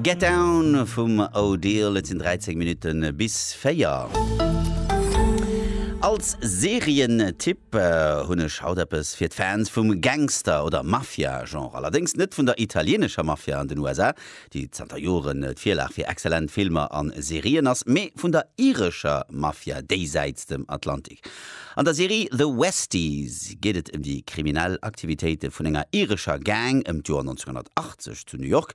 Get Down vum O'Deal. Et sinn 13 Minutte bis 4. Als Serientipp hunn ech haut eppes fir d'Fans vum Gangster oder Mafia-Genre. Allerdéngs net vun der italieenescher Mafia an den USA, déi zanter Joren d'Virlag fir exzellent Filmer a Serien ass, mee vun der irescher Mafia déisäits dem Atlantik. An der Serie The Westies geet et ëm déi kriminell Aktivitéite vun enger irescher Gang ëm d'Joer 1980 zu New York.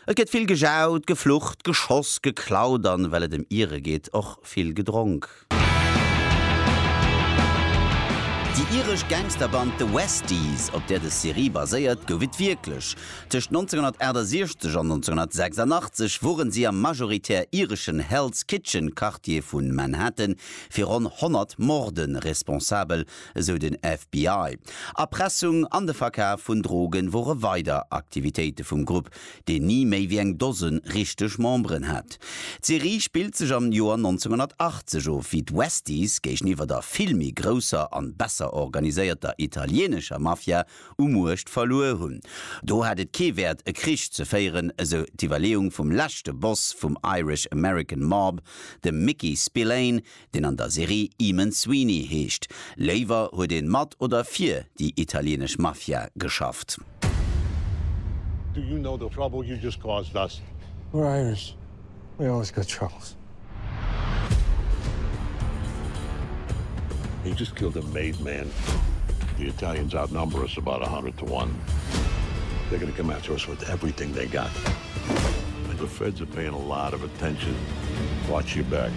Et gëtt vill gejaut, geflucht, geschoss, geklaut an, well et ëm Ire geet, och vill gedronk. Déi iresch Gangsterband The Westies, op där dës Serie baséiert, gouf et wierklech. Tëscht 1968 an 1986 wore si am majoritär ireschen Hell's Kitchen Quartier vu Manhattan, fir ronn 100 Morde responsabel, esou den FBI. Erpressung an de Verkaf vun Drogen wore weider Aktivitéite vum Grupp, deen ni méi wéi eng Dose richteg Memberen hat. D'Serie spillt sech am Joer 1980 of, wéi d'Westies géigeniwwer der vill méi grousser an besser organiséierter italienescher Mafia u Muecht verluer hunn. Do hat et kee Wäert e Krich ze féieren, esou d'Iwwerleeung vum leschte Boss vum Irish American Mob, dem Mickey Spillane, deen an der Serie Eamon Sweeney heescht. Léiwer huet een mat oder fir déi italieenesch Mafia geschafft. Do you know the trouble you just caused us? We're Irish. Jo, ech gëtt Chance. He just killed a made man. The Italians outnumber us about a hundred to one. They're gonna come after us with everything they got. And the Feds are paying a lot of attention. Watch your back.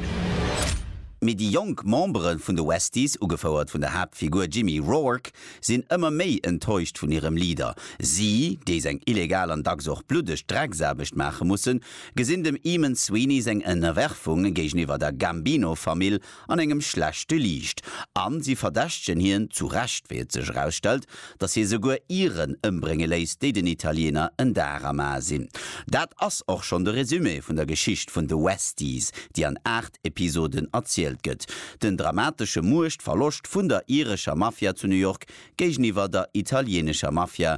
Mee déi jonk Membere vun de Westies, ugefouert vun der Haaptfigur Jimmy Rourke, sinn ëmmer méi enttäuscht vun hirem Leader. Si, déi seng illegal an dacks och bluddeg Drecksaarbecht maache mussen, gesinn dem Eamon Sweeney seng Ënnerwerfung géigeniwwer der Gambino-Famill an engem schlechte Liicht, a si verdächtegen hien, zu Recht, wéi et sech erausstellt, datt hie souguer Iren ëmbrénge léisst, déi den Italiener en Dar am A sinn. Dat ass och schonn de Resumé vun der Geschicht vun de Westies, déi an aacht Episoden erzielt gëtt, den dramatesche Muechtverloscht vun der irescher Mafia zu New York géigeniwwer der italieenescher Mafia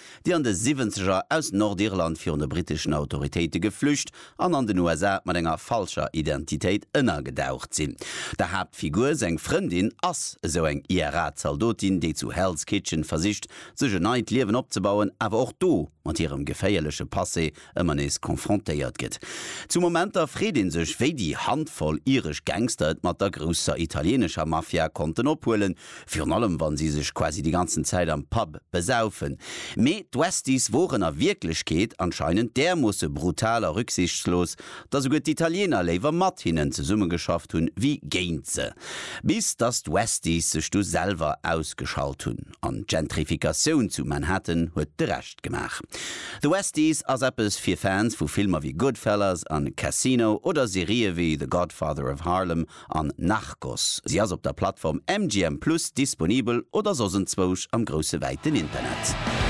déi an de Siwwenzeger aus Nordirland virun de briteschen Autoritéite geflücht an an den USA mat enger falscher Identitéit ënnergedaucht sinn. Der Haaptfigur seng Frëndin ass esou eng IRA-Zaldotin, déi zu Hell's Kitchen versicht, sech e neit Liewen opzebauen, awer och do mat hirem geféierleche Passé ëmmer nees confrontéiert gëtt. Zu Momenter freet ee sech, wéi déi Handvoll iresch Gangster et mat der grousser italieenescher Mafia konnten ophuelen, virun allem wa si sech quasi déi ganzen Zäit am Pub besaufen. Mee d'Westies woren a Wierklechkeet anscheinend därmoosse brutal a rücksichtslos, datt souguer d'Italieener léiwer mat hinnen zesummegeschafft hunn, wéi géint se. Bis datt d'Westies sech du selwer ausgeschalt hunn. An d'Gentrifikatioun zu Manhattan huet de Rescht. gemaach. The Westies ass eppes fir Fans vu Filmer wéi Goodfellas an Casino oder Serië wéi The Godfather of Harlem an Narcos. Si ass op der Plattform MGM Plus disponibel oder soss enzwousch am grousse wäiten Internet.